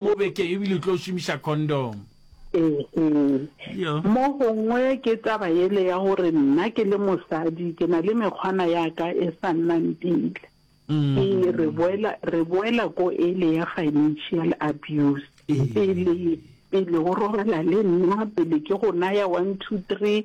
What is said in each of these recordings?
O be ke ebile o tlo šomiša condom. Ehe. Yo. Mogongwe ke taba yele ya gore nna ke le mosadi ke na le mekgwana ya ka e sa nnang pila. Ke re boela, re boela ko ele ya financial abuse. Pele, pele o robala le nna, pele ke go naya one, two, three,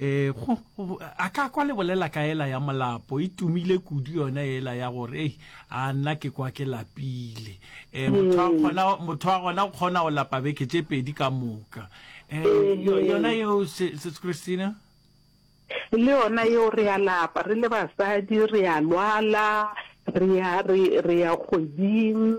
E, go, go, a ka kwa le bolela ka ela ya molapo e tumile kudu yona ela ya gore ei a nna ke kwa ke lapile e, motho wa gona motho wa gona o kgona go lapa beke tše pedi ka moka e, yo- yona yeo se se- christina le yona yeo re a lapa re le basadi re a lwala re ya re re ya kgweding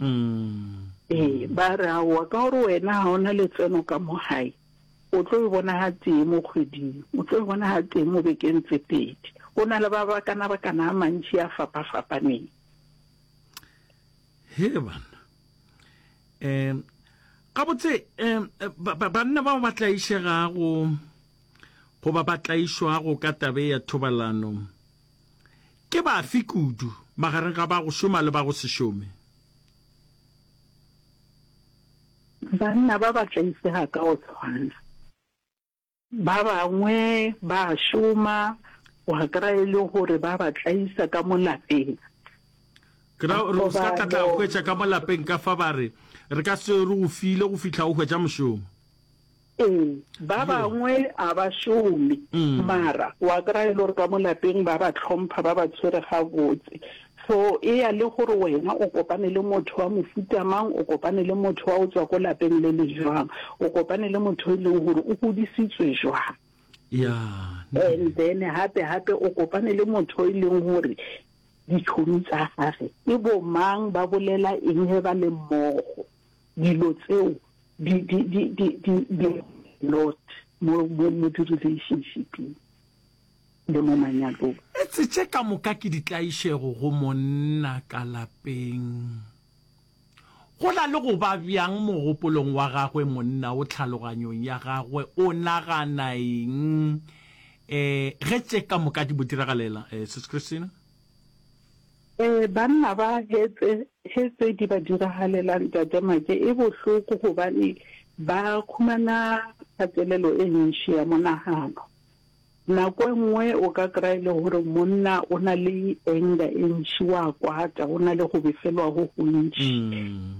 Ee, ba re, Aowa, ka gore wena ga o na letseno ka mo gae, o tlo e bona ga tee mo kgweding, o tlo e bona ga tee mo bekeng tse pedi. Go na le ba ba kana ba kana a mantši a fapafapaneng. He banna. Um, gabotse, um, banna bao ba tlaišegago goba ba tlaišwago ka tabe ya thobalano, Ke bafe kudu magareng ga ba go šoma le ba go se šome? Banna ba ba tla ipea ka go tshwana. Ba bangwe ba a šoma, wa kry-a e le gore ba ba tlaisa ka mo lapeng. Ke ra gore o se ka tlatla go hwetša ka mo lapeng ka fa ba re, Re ka se re go file go fihla o hwetša mošomo. Ee, ba bangwe a ba šome, mara wa kry-a e le gore ka mo lapeng ba ba tlhompha, ba ba tshwere gabotse. So e ya le gore wena o kopane le motho wa mofuta mang, o kopane le motho wa go tswa ko lapeng le le jwang, o kopane le motho e leng gore o godisitswe jwang. And then gape-gape o kopane le motho e leng gore ditšhomi tsa gage ke bo mang, ba bolela eng ge ba le mmogo. Dilo tseo di, di, di, di, di, di lot mo, mo, mo di-relationshiping le mo manyalong. Etse tše ka moka ke ditlaišego go monna ka lapeng. Go na le go ba bjang mogopolong wa gagwe monna o tlhaloganyong ya gagwe, o nagana eng eh, ge tše ka moka di mo diragalela eh, Sis Christina? Ee, banna ba hetse he tse di ba diragalela ntate Make e bohloko gobane ba khumana kgatelelo e ntši ya monagano. Nako e nngwe o ka kry-a e le gore monna o na le anger e ntši wa kwata o na le go befelwa go gontši.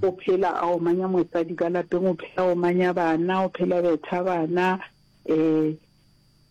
O phela a omanya mosadi ka lapeng, o phela a omanya bana, o phela betha bana um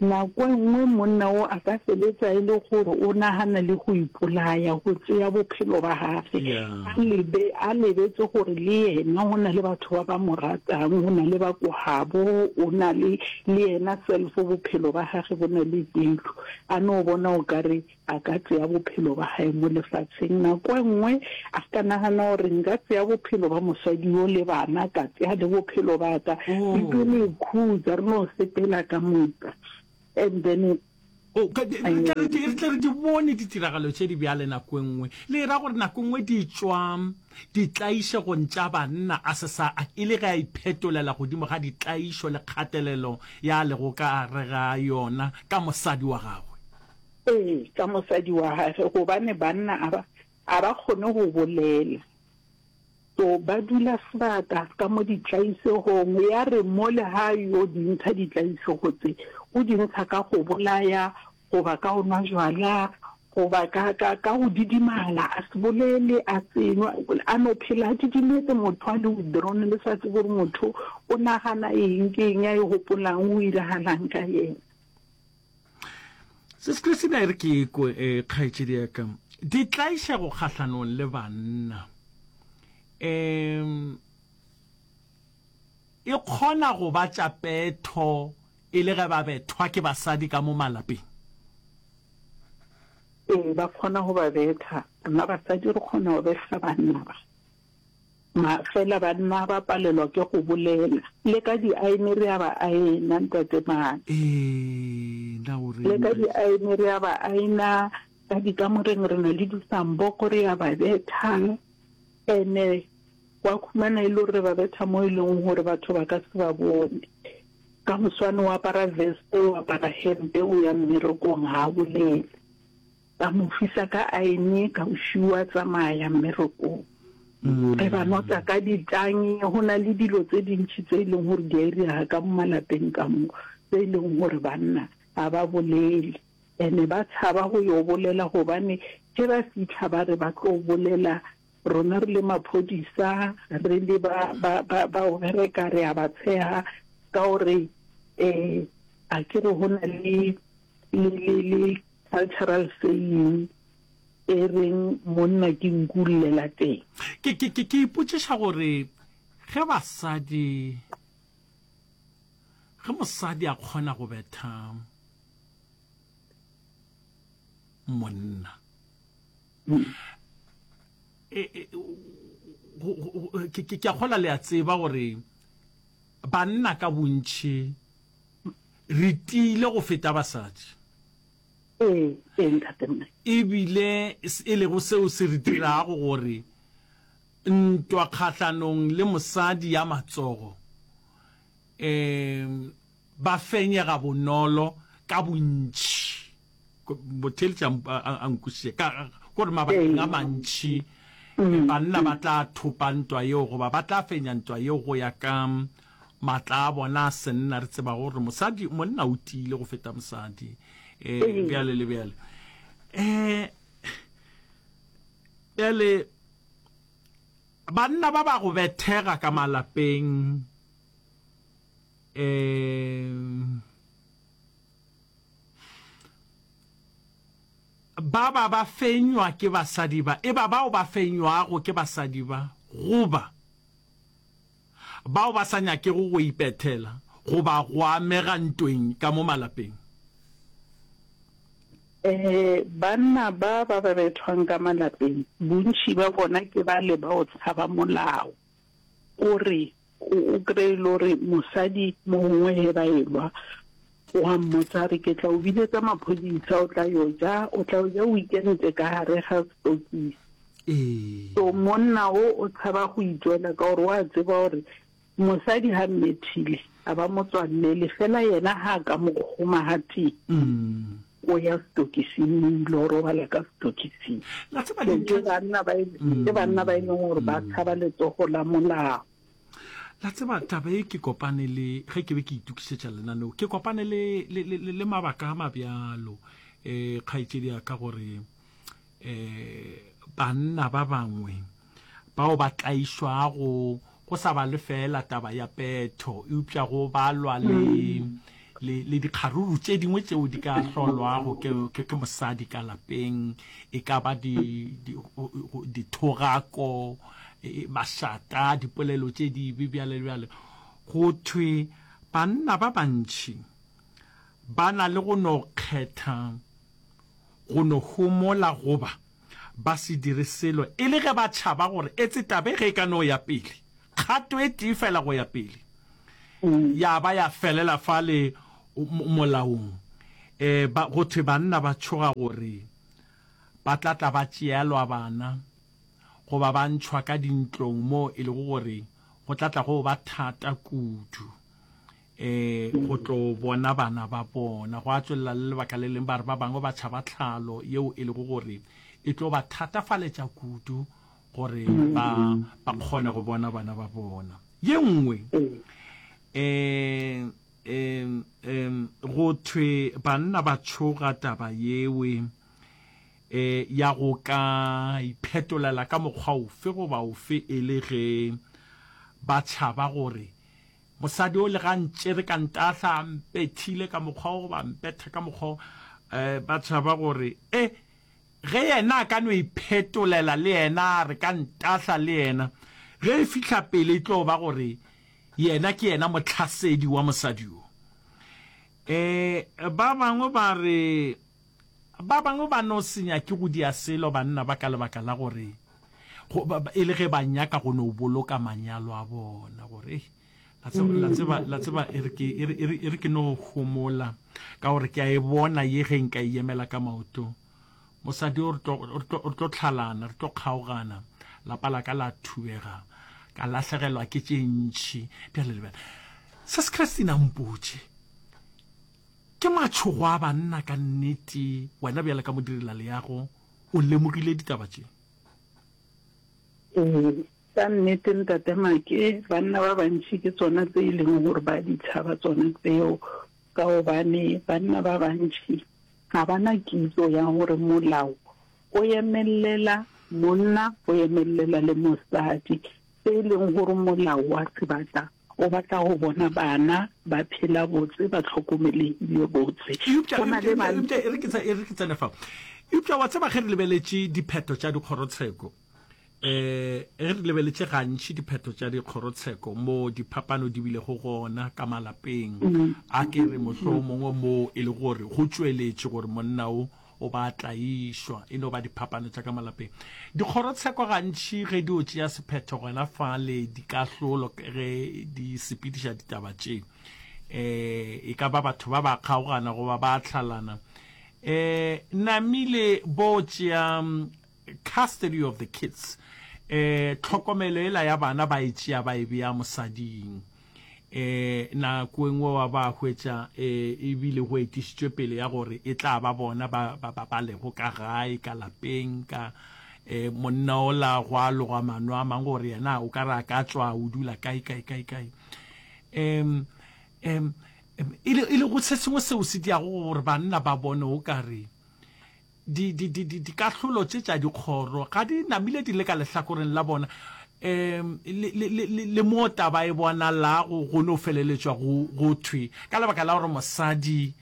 Nako e nngwe monna wo a ka sebetsa e le gore o nagana le go ipolaya, go tsea bophelo ba gage, a lebe, a lebetse gore le yena o na le batho ba ba mo ratang, o na le ba ko gabo, o na le le yena self bophelo ba gage bo na le pelo. A no bona o ka re A ka tsea bophelo ba hae mo lefaseng. Nako e nngwe a ka nagana gore, Nka tsea bophelo ba mosadi yo le bana, ka tsea le bophelo ba ka. Bibele e khutsa re no sepela ka moka. And then. O ka, re tla re di, re tla re di bone ditiragalo tše di bjale nako e nngwe. Le era gore nako e nngwe di tšwa ditlaišegong tša banna, a se sa, a, e le ge a iphetolela godimo ga ditlaišo le kgatelelo ya a lego ka gare ga yona ka mosadi wa gagwe. Ee, ka mosadi wa gage, gobane banna a ba, a ba kgone go bolela. So, ba dula sebaka ka mo ditlaisegong. Ya re mo le ga yo di ntsha ditlaisego tse, o di ntsha ka go bolaya, goba ka go nwa jwala, goba ka, ka, ka go didimala, a se bolele, a se nwa, a no phela a didimetse, motho a le withdrawn, le sa tsebe gore motho o nagana eng, ke eng a e gopolang, go iragalang ka yena. se se se dire ke ko e eh, kgaetšedi ya ka di tlaiša go kgahlanong le banna um e kgona go ba tša petho e le ge ba bethwa ke basadi ka mo malapeng ee ba kgona go ba betha nna basadi re kgona go betha banna ba Fela banna ba palelwa ke go bolela. Le ka diaene re a ba aena, Ntate Mane. Ee, na o reng, Le ka Ntate? diaene re a ba aena, ka dikamoreng re na le disamboko re a ba betha. Ene wa khumana e le gore re ba betha mo e leng gore batho ba ka se ba bone. Ka moswane o apara veste, o apara hempe, o ya mmerekong, ga a bolele. Ka mo fisa ka aene, ka o šiwa tsamaya mmerekong. Re ba notsa ka ditangi, go na le dilo tse dintši tse e leng gore di a irega ka mo malapeng ka mo, tse e leng gore banna ga ba bolele. Ene ba tshaba go yo bolela gobane ge ba fitlha ba re ba tlo bolela Rona re le maphodisa re le ba ba ba ba o bereka re a ba tsheha ka gore eh a ke re hona le le le le cultural saying e reng monna ke nku llela teng. Ke ke ke ke ipotšiša gore ge basadi ge mosadi a kgona go betha monna ke a kgola le a tseba gore banna ka bontšhi re tiile go feta basadi ebile e lego seo se re dirago gore ntwa kgahlanong le mosadi ya matsogo um Ba fenyega bonolo ka bontši. Motheeletši a nkwešiše ka gore mabakeng a mantši banna ba tla thopa ntwa yeo goba ba tla fenya ntwa yeo go ya ka matla a bona a senna. Re tseba gore mosadi, monna o tiile go feta mosadi, um bjale le bjale. Um bjale banna ba ba go bethega ka malapeng. um ba ba ba fenywa ke basadi ba e ba bao ba fenywago ke basadi ba goba bao ba sa nyakego go ipethela goba go amega ntweng ka mo malapeng. Ee, banna ba ba ba bethwang ka malapeng bontši ba bona ke bale bao tshaba molao. O re, O, o krey e le gore mosadi mo gongwe ge ba elwa, o a mmotsa a re, Ke tla o biletsa maphodisa, o tla yo ja, o tla yo ja o ikentše ka gare ga stokisi. Ee. So monna o, o tshaba go itšwela ka gore o a tseba gore mosadi ga mmethile, ga ba mo tswalele, fela yena ga a ka mo kgoma gatee. Mm. O ya setokising, o ile robala ka setokising. Ke banna ba e leng gore ba tshaba letsogo la molao. La tseba taba e ke kopane le ge ke be ke itukisetša lenaneo ke kopane le le le le mabaka a mabjalo eh kgaetšedi ya ka gore e, banna ba bangwe bao ba tlaišwago go sa ba lefeela taba ya petho eupša go balwa le mm. le, le dikgaruru tše dingwe tšeo di ka hlolwago ke, ke, ke mosadi ka lapeng e ka ba dithogako di, di e, mašata dipolelo tše dibe bjale bjale go thwe banna ba bantšhi ba na le go no kgetha go no homola goba ba se dire selo e le ge ba tšhaba gore etse taba e ge e ka no ya pele kgato e tee fela go ya pele ya ba ya felela fale molaong. E, ba, go thwe banna ba tšhoga gore ba tla tla ba tšeelwa bana goba ba ntšhwa ka dintlong moo e lego gore go tla tla go ba thata kudu. um go tlo bona bana ba bona. Gwa tswelela le lebaka le leng, ba re ba bangwe ba tšhaba tlhalo yeo e lego gore e tlo ba thatafaletša kudu gore ba ba kgone go bona bana ba bona. Ye nngwe um um um go thwe banna ba tšhoga taba yewe um ya go ka iphetolela ka mokgwa ofe goba ofe e le ge ba tšhaba gore Mosadi o lega ntšere ka ntahla, a mpethile ka mokgwa o goba a mpetha ka mokgwa o, eh, ba tšhaba gore, eh, ge yena a ka no iphetolela le yena a re ka ntahla le yena, ge e fihla pele e tlo ba gore yena ke yena mohlasedi wa mosadi yo. Eh, ba bangwe ba re, Ba bangwe ba no se nyake go dia selo banna ba ka lebaka la gore go, ba, e le ge ba nyaka go no boloka manyalo a bona, gore ei, la tseba, la tseba, la tseba e re ke, e re, e re, e re ke no homola, ka gore ke a e bona ye ge nka e yemela ka maoto. Mosadi o, re tlo, re tlo, re tlo tlhalana, re tlo kgaogana, lapa la ka la thubega, ka lahlegelwa ke tše ntši. Bjale lebela se se Christine a mpotše, Ke matšhogo a banna ka nnete. Wena bjale ka modirelaleago o lemogile ditaba tše? Ee, ka nnete, Ntate Make, banna ba bantši ke tsona tse e lego gore ba a di tšhaba tsona tseo, ka gobane banna ba bantši ga ba na kitso ya gore molao o emelela monna, o emelela le mosadi, se e leng gore molao wa sebata O batla go bona bana ba phela botse, ba hlokomelegile botse. Eupša, eupša, e re ke, e re ke tsene fao. Eupša wa tseba, ge re lebeletše diphetho tša dikgorotsheko, um ge re lebeletše gantši diphetho tša dikgorotsheko moo diphapano di bilego gona ka malapeng, mm. a ke re mohlomongwe moo e le gore go tšweletše gore monna o o ba tlaišwa e no ba diphapano tša ka malapeng dikgorotsheko gantši ge di o tšea sephetho gona fa le dikahlolo ge di sepediša ditaba tše eh e ka ba batho ba ba kgaogana goba ba tlhalana eh namile bo tšea Custody of the kids, eh, tlhokomelo ela ya bana ba e tšea ba e bea mosading. Eh, nako e nngwe wa ba hwetša eh, ebile go etišitšwe pele ya gore e tla ba bona ba, ba, ba, ba lego ka gae ka lapeng ka eh, monna o la go a loga mano a mang gore yena o ka re a ka tswa o dula kae kae kae kae um, um, e le go se sengwe seo se diago gore banna ba bone o ka re Di, di, di, di, dikahlolo tše tša dikgoro ga di namile di le ka lehlakoreng la bona, um le, le, le, le, le moo taba e bonalago go no feleletšwa go, go thwe ka lebaka la gore mosadi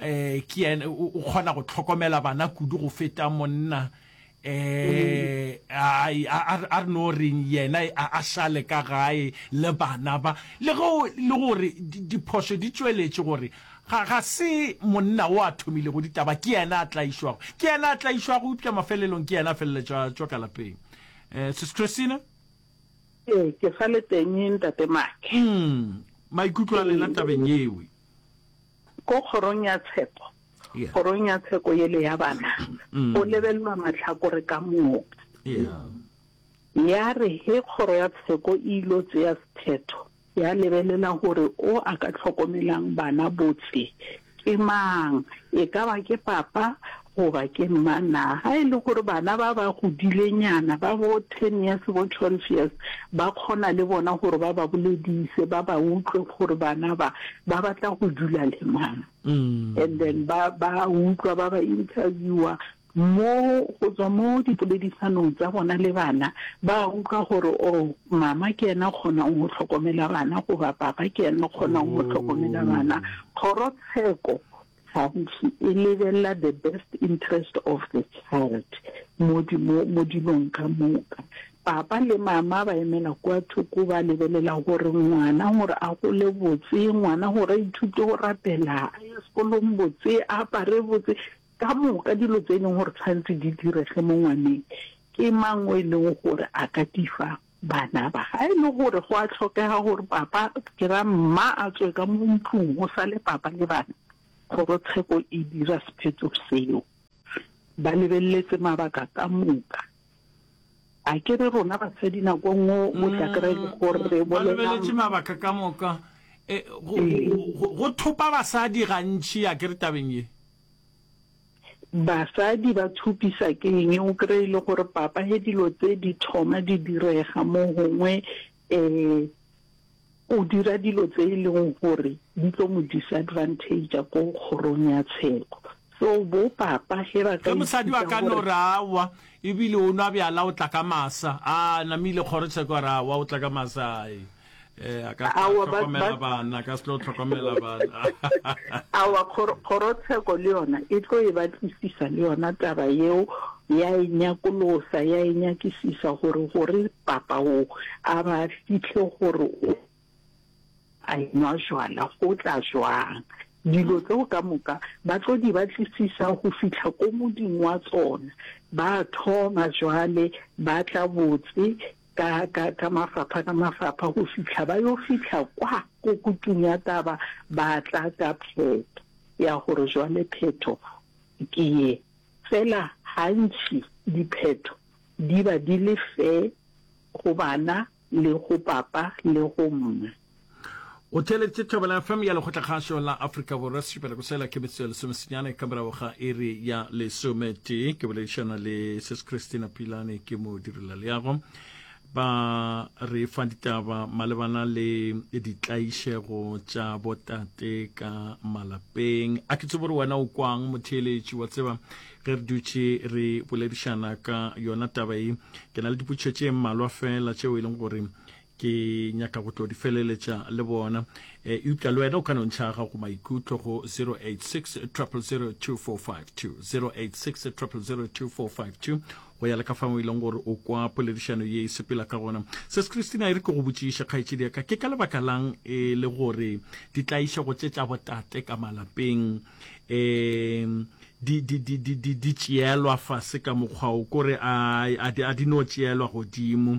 um ke yena o kgona go hlokomela bana kudu go feta monna, um a, a, a re no reng yena a, a šale ka gae le bana ba, le ge le gore diphošo di tšweletše gore Ga, ga se monna o a thomilego ditaba, ke yena a tlaišwago, ke yena a tlaišwago, eupša mafelelong ke yena a feleletša a tšwa ka lapeng. Eh, Sis Christina? Ee, ke sa le teng, Ntate Mark. Umm, maikutlo a lena tabeng yeo? Ko kgorong ya tshepo, Yeah. kgorong ya tsheko yele ya bana, Mm. go lebelelwa mahlakore ka moka. Yeah. Ya re ge kgoro ya tsheko e ilo tsea sephetho, Ya lebelela gore o a ka hlokomelang bana botse ke mang, e ka ba ke papa goba ke mma. Na ga e le gore bana ba ba godilenyana ba bo ten years, bo twelve years, ba kgona le bona gore ba ba boledise, ba ba utlwe gore bana ba ba batla go dula le mang and then ba ba utlwa ba ba interviewer. Mo, go tswa mo dipoledisanong tsa bona le bana, ba a utlwa gore, Oo, Mama ke yena o kgonang go hlokomela bana, goba Papa ke yena o kgonang go hlokomela bana. Kgorotsheko gantši e lebelela the best interest of the child mo, mo, mo dilong ka moka. Papa le Mama ba emela kua thoko, ba lebelela gore ngwana gore a gole botse, ngwana gore a ithute go rapela, a ye sekolong botse, a apare botse. Ka moka dilo tse e leng gore tshwanetse di direge mo ngwaneng, ke mang o e leng gore a ka di fa bana ba? Ga e le gore go a tlhokega gore papa, ke ra mma a tswe ka mo ntlong go sale papa le bana, kgorotsheko e dira sephetho seo. Ba lebeletse mabaka ka moka. A ke re rona basadi nako nngwe o tla kry-a e le gore re Ba bolela lebeletse mabaka ka moka. Eh, go, go, go, go thopa basadi gantši a ke re tabeng ye. Basadi ba thupisa ke eng? O kry e le gore papa he dilo tse di thoma di direga mo gongwe um o dira dilo tse e leng gore di tlo mo disadvantager ko kgorong ya tsheko so bo papa he ba ka mosadi wa ka no ra wa ebile o nwa bjala o tla ka masa a namile kgoro tsheko ra wa o tla ka masa eh a ka tlhokomela bana ka se tlo tlhokomela bana awa kgorotsheko le yona e tlo e batlisisa le yona taba yeo ya e nyakolosa ya e nyakisisa gore gore papa o a ba fitlhe gore a enwa jwala go tla jwang dilo tseo ka moka ba tlo di batlisisa go fitlha ko modimo wa tsona ba thoma jwale ba tla botse ka, ka, ka mafapha ka mafapha go fihla ba yo fihla kwa go kutung ya taba, ba tla ka phetho ya gore jwale phetho ke ye. Fela gantši diphetho di ba di le fe go bana le go papa le go mma. O theeleditše Thobela FM ya Lekgotlakgašo la Afrika Borwa sešupela go sela ke metsotso ya lesomesenyane ka morago ga iri ya lesometee. Ke boledišana le Ses Christina Pilane ke mo direla leago ba re fa ditaba malebana le ditlaišego tša botate ka malapeng a ke tsebo gore wena o kwang motheeletši wa tseba ge re dutše re boledišana ka yona taba e ke na le dipotšho tše mmalwa fela tšeo e leng gore Ke nyaka go tlo di feleletša le bona. E, eupša le wena o ka no ntšha gago maikutlo go 086 000 2452, 086 000 2452, go ya le ka fao e leng gore o kwa poledišano ye e sepela ka gona. Ses Christina e re ke go botšiše kgaetšedi ya ka, ke ka lebaka lang e le gore ditlaišego tše tša botate ka malapeng um di, di, di, di, di, di tšeelwa fase ka mokgwa o kore a, a, di, a di no tšeelwa godimo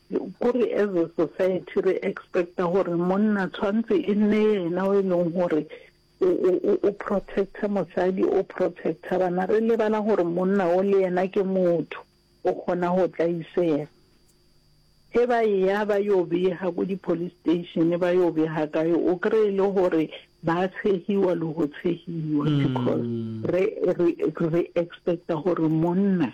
Kore as a society re expecta gore monna tshwantse e nne yena o e leng gore o, o, o, o protecta mosadi, o protecta bana. Re lebala gore monna o le yena ke motho, o kgona go tla isega. Ge ba eya ba yo bega ko di-police station, ba yo bega kae, o kry e le gore ba tshegiwa le go tshegiwa because re, re, re expecta gore monna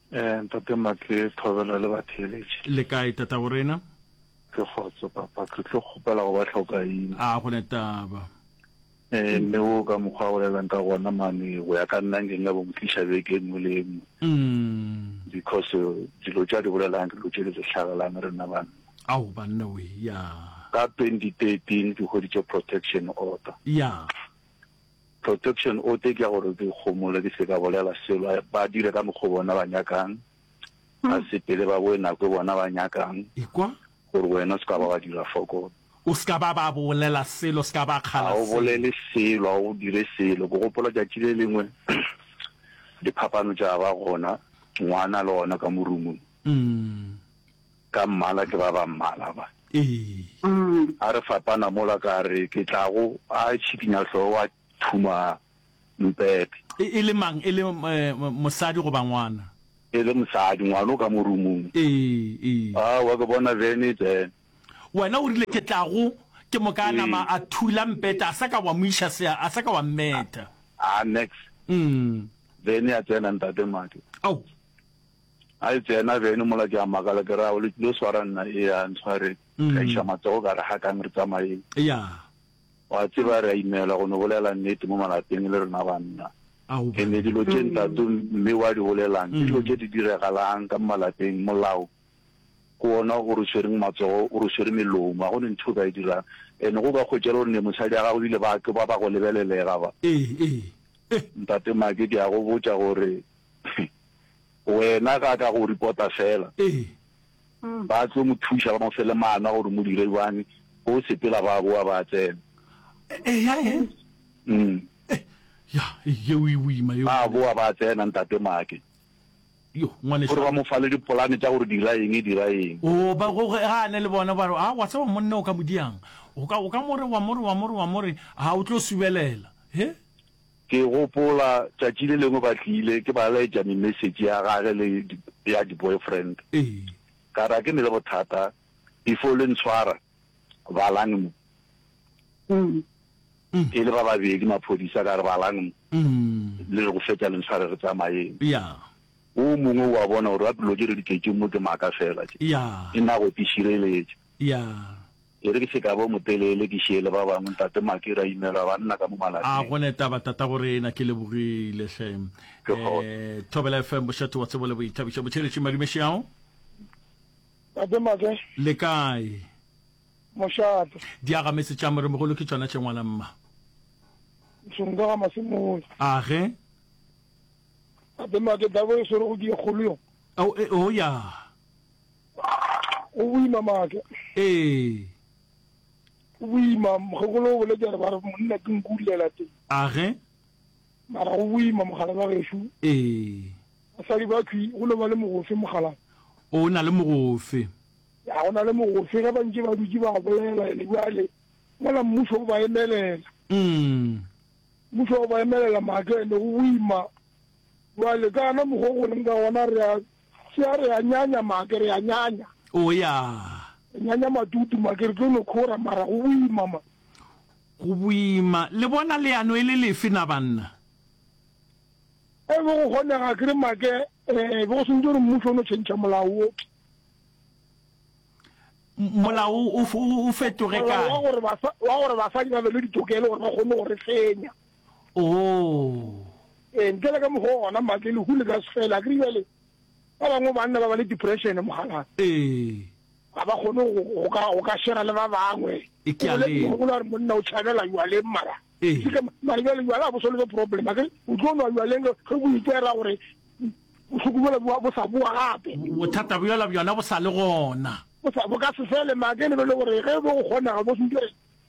Ee, Ntate Mark, ke thobela le batheeletši. Le kae, Tataborena? Ke kgotso, Papa. Ke tlo kgopela go ba hlokaina. A go ne taba? Ee, mme wo ka mokgwa a bolelang ka gona mane, go ya ka nna nke nka bo mo tliša beke e nngwe le e nngwe. Umm. Because dilo tše a di bolelang ke dilo tše di re hlagelang rena banna. Ao, banna we, ya. Ka 2013 ke hweditše protection order. Ya. Protection o tee ke ya gore dikgomolo di se ka bolela selo, ba dire ka mokgwa o bona ba nyakang, ba sepele ba boe nako e bona ba nyakang, Ekwa. gore wena o se ka ba wa dira fokolo. O se ka ba ba bolela selo, o se ka ba kgala selo. Ga o bolele selo, ga o dire selo. Ke gopola tšatši le lengwe diphapano tša ba gona, ngwana le gona ka mo roomong. Ka mmala ke ba ba mmala ba. Ee. A re fapana mola ka re ke tlago a tšhikinya hlogo a thuma mpete. E, e le mang? E le mosadi goba ngwana? E le mosadi, ngwana o ka mo rumung. Ee, ee. A, wa ke bona bene bene. Wena o rile ke tlago ke mo ka nama a thula mpete a sa ka wa mo iša sea a sa ka wa mmetha. A, nex. Bene a tsena ntate Mmadi. Ao. A e tsena bene mola ke a makala ke ra o le tlilo swara nna ea ntshware ka iša matsogo ka re hakang re tsamayeng. Wa tseba re a imela go no bolela nnete mo malapeng le rena banna. E ne dilo tše ntato mme wa di bolelang ke dilo tše di diregalang ka malapeng molao ke wona o re tshwereng matsogo o re tshwere melomo ga go ne ntho o ka e dirang ene go ka kgwetšela gore ne mosadi ya gago bile ba ke ba ba go lebelelega ba ntate make ke a go botša gore Wena ga ka go reporta fela. Ba tlo mo thuša ba mo fe le mana gore mo dire bjang go sepela ba boa ba tsena. Ba boa ba tsena ntate Make. Gore ba mo fa le dipolane tša gore dira eng dira eng. Ga a ne le bona ba re a wa tseba monna o ka mo diang. O ka mo re wa mo re wa mo re wa mo re a o tlo subelela. Ke gopola tšatši le lengwe ba tlile, ke ba laetša me-message ya gage le ya di-boyfriend. Ka ra ke ne le bothata before le ntshwara, balang mo. E le ba babedi maphodisa, ka re balang mo, le re go fetša le ntshware re tsamaeng. O mongwe o a bona gore ba pelo tše re di tletšeng mo ke maaka fela tše, ke nna go ke šireletša. Ere ke se ka ba o motelele, ke šie le ba bangwe, Ntate Maki, ra imelwa banna ka mo malapeng. A go ne taba, tatago rena. Ke lebogile hle. Ke gona. Eh, Thobela FM, Bošate wa Tsebo le Boithabišo. Botheletši Madume Šiao. Ntate Make. Le kae? Mošate. Diagametse tša Moremogolo ke tšona tše ngwana mma. Ntšhonka ga Masemola. A ge? Ntate Make, tabo e swere go die kgolo yona. Oh, eh, oh ya. Go boima maaka. Ee. Go boima, mokgekolo o boletše gore ba re monna ke nku o lela teng. Age. Mara go boima mogala ba gešo. Ee. Basadi ba thwi go no ba le mogofe mogala. O na le mogofe. Ya go na le mogofe ge ba ntše ba dutše ba bolela ene bjale mola mmušo o ba emelela. Mm. Mmušo o ba emelela maaka ene go boima. Bjale ka ana mokgwa o go leng ka gona re a Sia re a nyanya make re a nyanya. O ya. Re nyanya matutu make re tlo no khora mara go boima ma. Go boima le bona leano e le lefe na banna? E be go kgonega kere make eh be go swantse gore mmušo o no tšhentšha molao wo. Molao o fetoge kae? Wa gore basadi ba be le ditokelo gore ba kgone go re fenya. Oo! Ee, ntle le ka mokgwa o gona matle, lehu le ka se fele. A ke re bjale ba bangwe banna ba ba le depression, mogalana. Ee. Ga ba kgone go, go ka, go ka shera le ba bangwe. E ke a le. Ke gopola gore monna o tšhabela jwaleng mara. Ee. Ke ka mara jwale jwala a bo solve problem. A ke re o tlo nwa jwaleng ge bo itera gore bohloko bjala bo bo sa boa gape. Bothata bjala bjona bo sa le gona. Bo sa, bo ka se fele ma ke lebele gore ge bo go kgonega bo se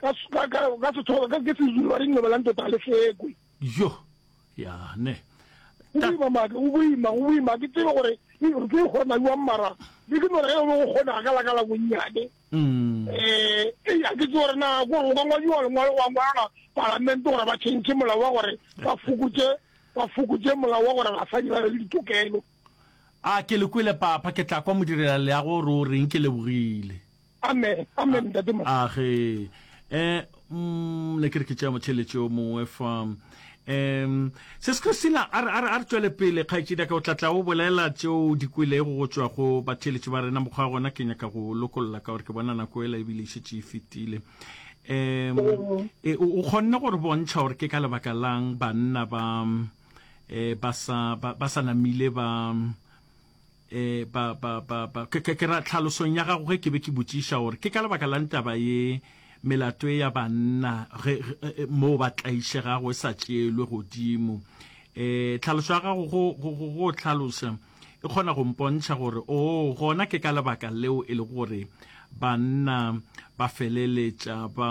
ka, ka, ka, ka sethoba ka ke sezulu ba re nyoba la ntota le sekwe yo ya ne o boima maka o boima o boima ke tsebe gore re tlo ikgora mabi wa mmara le ke nore ge o be go kgona ka laka la bonnyane um eh, eh a ke tse gore na gore o ka ngwadiwa lengwalo wa ngwala palamente gore ba tšhentšhe molao wa gore ba fokotse ba fokotse molao wa gore basadi ba be le ditokelo a ke le kwele papa ke tla kwa modirela leago gore o reng ke lebogile Amen, amen, Ntate Mo. Age, eh, mm, ne ke re ke tšea motheletši o mongwe fa um ses christina a re- a re a re tšwele pele kgaetšedi ka o tla tla o bolela tšeo di kwelego go tšwa go batheletši ba rena mokgwa wa gona ke nyaka go lokolla ka gore ke bona nako ela ebile e šetše e fetile um e, o o kgonne gore bontšha gore ke ka lebaka lang banna ba um ba sa ba ba sa namile ba E, pa, pa, pa, pa, ke, ke, ke ra tlhalosong ya gago ge ke be ke botšiša gore ke ka lebaka la ntaba ye melato e ya banna ge, ge, e, e, moo ba tlaišegago e sa tšeelwe godimo. E, tlhaloso ya gago go, go, go, go tlhalosa e kgona go mpontšha gore o oh, gona ke ka lebaka leo e le gore banna ba feleletša ba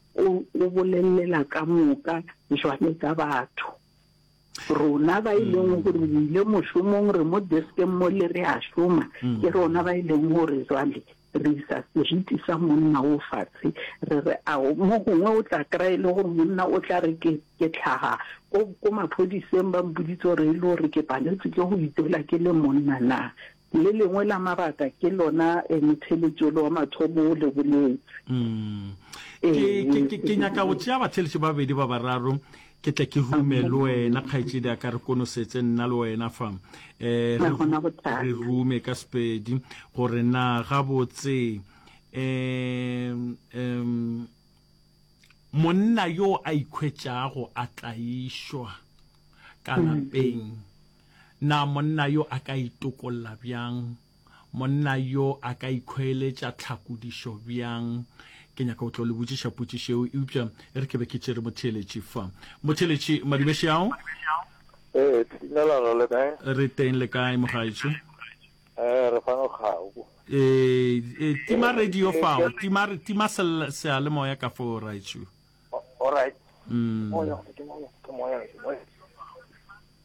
O o bolelela ka moka bjale ka batho. Rona ba e leng gore re ile mošomong, re mo deskeng mole re a šoma, ke rona ba e leng gore jwale re isa seriti sa monna wo fatshe, re re a o mo gongwe o tla kry-a e le gore monna o tla re ke ke tlhaga ko ko maphodiseng ba mpoditse gore e le gore ke paletswe ke go itwela ke le monna na. Le lengwe la mabaka ke lona motheletši ole wa mathomo o le boletše. Ke, ke, ke nyaka go tšea batheletši ba babedi ba bararo, ke tle ke rume le wena, kgaetšedi a ka re konosetse nna le wena fa. Re, re rume ka Sepedi, gore na gabotse, um, um, monna yo a ikhwetšago a tlaišwa ka lapeng, Na monna yo a ka itokolla bjang? Monna yo a ka ikhweeletša tlhakodišo bjang? Ke nyaka go tlo le botšiša potšišo yeo, eupša e re ke be ke tšere motheeletši fa. Motheeletši, Madibešeao? Ee, Timelelo, le kae? Re teng, le kae, mogaetšo? Ee, re fano kgau. Ee, tima radio fao, tima, tima seyalemoya ka foo, raetšo. Alright. Mm. Moya, ke moya, ke moya, ke moya.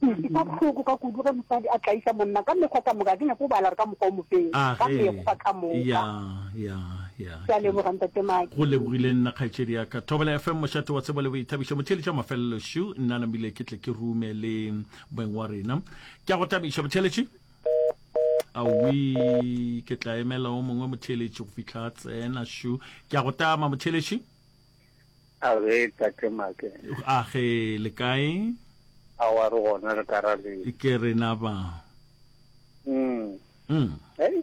Ke utlwa bohloko ka kudu ge mosadi a tlaiša monna ka mekgwa ka moka. Ga ke nyake go bala gore ka mokgwa o mofeng, A ka ge, mekgwa ka moka. ya, ya, ya. Ke a leboga, Ntate Maki. Go lebogile nna kgaetšedi ya ka. Thobela FM, mošate wa tsebo le boithabišo. Motheeletša wa mafelelo šo, nna namile ke tle ke rume le moeng wa rena. Ke a go thabiša motheeletši. Awii, ke tla emela o mongwe motheeletši go fihla a tsena šo. Ke a go tama motheeletši. Age, Tate Make. Age, le kae? Aowa re gona re ka ra le. Ke rena ba. Mm. Mm. Hey.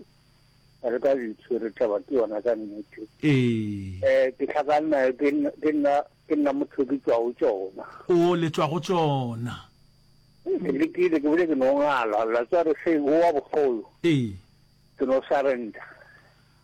Re ka bitso re taba ke yona ka nnete. Ee. Eh, ke tlhakanna ke ke nna ke nna motho ke tswa go tsona. O le tswa go tsona. Ke le ke le ke bile ke no ngala la tswa re se o wa bogolo. Ee. Ke no surrender.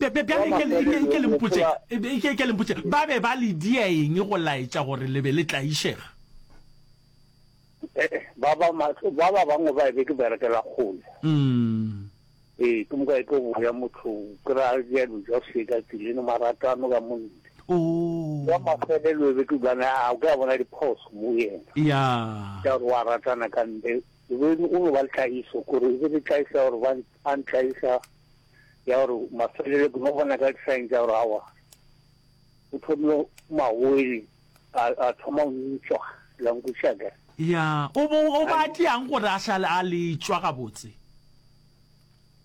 Bjale e ke, e ke, e ke le mpotše, e ke, e ke le mpotše, ba be ba le dia eng go laetša gore le be le tlaišega? Ee, ba ba mahlo, ba ba bangwe ba e be ke berekela kgole. Mm. Ee, ke moka e tlo boya motho, ke ra ja dijo a seka tseleng, maratano ka monte. Oh. Wa mafelelo e be ke bana, a o ka bona diphoso mo yena. Ya. Ka gore wa ratana ka ntle, e be o no ba le tlaiso, gore e be le tlaiso ya gore ba, ba ntlaiša. ya gore mafelelo ke no bona ka sign tsa gore awa o thomile magoele a a thoma go utswa lankushaka ya o bo o batleang gore a šale a letšwa gabotse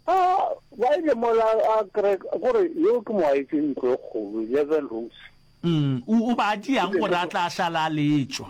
a ba ile mola a kre gore yo ke mo a etse ntlo e kgolo eleven rooms mm o o batleang gore a tla šale a letšwa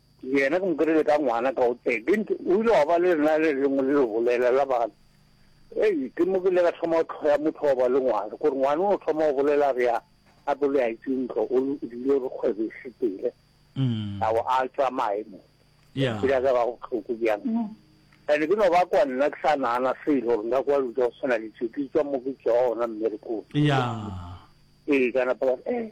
Yena ke mo kry-ile ka ngwana ka o teng. O ile wa ba le lena le lengwe le le bolela la bana. Ei, ke mo ke ile ka thoma go tlhoya motho wa ba le ngwana. Gore ngwana o thoma go bolela re ya a bo le a itse ntlo o dilo re kgwebo e sepele. Mm. A o a tsamaye mo. Yeah. Ke ka ba go tlhoko bjang. Mm. Ene ke no ba kwa nna ke sa nana se ile gore nka kwa lu tsa go sena le tse ke tswa mo ke tswa ona mmerekong. Yeah. Ee kana pa eh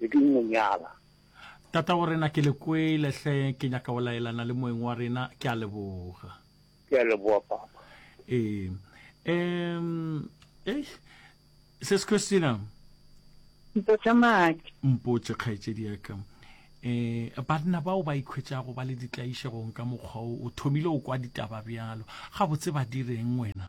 be ke mo nyala. Tata wa rena ke le kwele hle ke nyaka go laelana le moeng wa rena ke a leboga. Ke a leboga papa. Ee. Em eh Sis Christina. Mpotša Maki. Mpotše kgaetšedi ya ka. Eh banna bao ba ikhwetšago ba le ditlaišegong ka mokgwa o o thomile o kwa ditaba bjalo gabotse ba direng wena?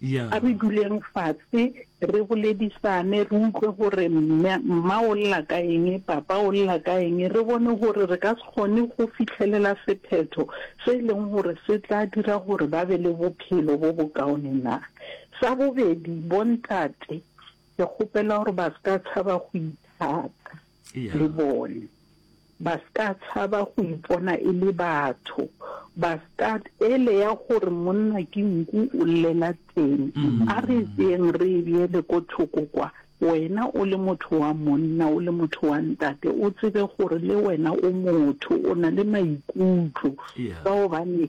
Ya. A re duleng fase, re boledisane, re utlwe gore mme, mma o lla ka eng, papa o lla ka eng, re bone gore re ka se kgone go fihlelela sephetho se e leng gore se tla dira gore ba be le bophelo bo bokaone na. Sa bobedi, bontate, ke kgopela gore ba se ka tshaba go ithata. le bone, ba s'ka tshaba go ipona e le batho, ba s'ka ele ya gore monna ke nku o llela teng. A re tseeng re e beele ko thoko kwa, wena o le motho wa monna, o le motho wa ntate, o tsebe gore le wena o motho, o na le maikutlo, ka gobane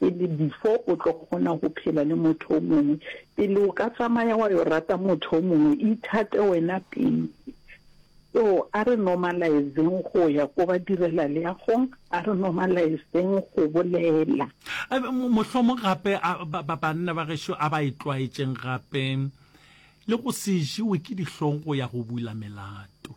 pele before o tlo kgona go phela le motho o mongwe, pele o ka tsamaya wa yo rata motho o mongwe ithate wena pele. So a re normalize-ng go ya ko ba direla leagong, a re normalize-ng go bolela. Mohlomong gape banna ba gešo a ba itlwaetšeng gape le go se jewe ke dihlong go ya go bula melato.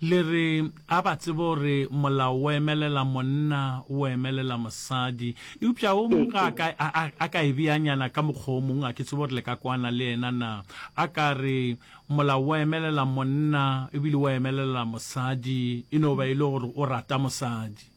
Le re, A ba tsebe gore molao o emelela monna, o emelela mosadi? Eupša wo mongwe a ka, a, a, a ka e beanyana ka mokgwa wo mongwe, ga ke tsebe gore le ka kwana le yena na. A ka re, Molao o emelela monna, ebile o emelela mosadi, e no ba e le gore o rata mosadi.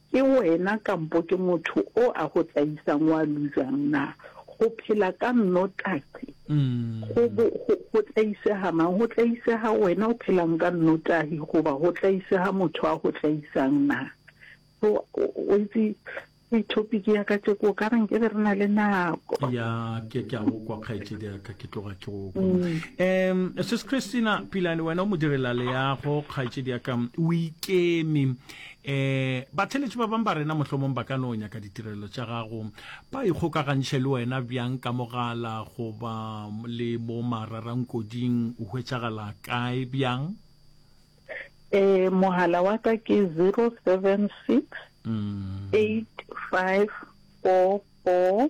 Ke wena kampo ke motho o a go tsaisang wa lujang na? Go phela ka nnotaxi go bo go, go tlaisega mang? Go tlaisega wena o phelang ka nnotahi goba go tlaisega motho a go tlaisang na? So, o o itse ke topic ya ka tšeko ka re nke be re na le nako. ya ke ke a go kwa kgaetšedi ya ka ke tloga ke go kwa um sis christina pilane wena o mo direla leago kgaetšedi ya ka o ikeme Ee, batheeletši ba bang ba rena mohlomong ba ka no nyaka ditirelo tša gago. Ba ikgokagantšhe le wena bjang ka mogala goba le mo mararangkoding? O hwetšagala kae bjang? Ee, mogala wa ka ke 076 8544 mm.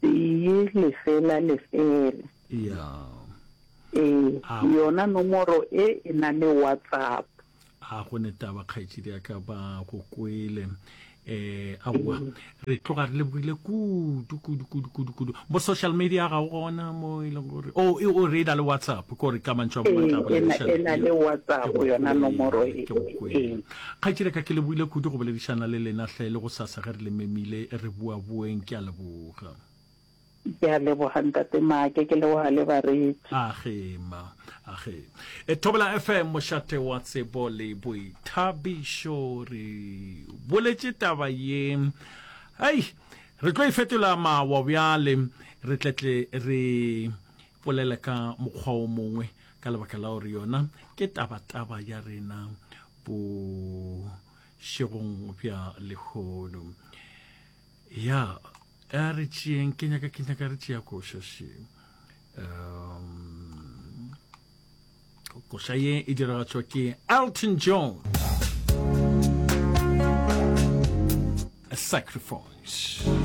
Tee, lefela, lefela. Ya. Ee, A. yona nomoro e e na le WhatsApp. A go ne taba kgaetšedi ya ka ba go kwele eh aowa re tloga re lebogile kudu kudu kudu kudu kudu mo social media ga o gona mo e leng gore o e o re na le whatsapp ko re ka mantšwa mo Ee, batla go e na- e na le WhatsApp yona nomoro e. Ke go kwele. Ee. Kgaetšedi ya ka, ke leboile kudu go boledišana le lena hle, le gosasa ge re le memile re buabueng. Ke a leboga. Ke a leboga Ntate Maake, ke leboga le bareetsi. Age ma, age. E Thobela FM, mošate wa tsebo le boithabišo. Re boletše taba ye, hei, re tlo e fetola mawa bjale, re tletle re polele ka mokgwa o mongwe. ka lebaka la gore yona ke tabataba ya rena bošegong bja lehono ya a re tšeeng ke nyaka ke nyaka re tšea košaše um koša ye e diragatšwa ke elton john a sacrifice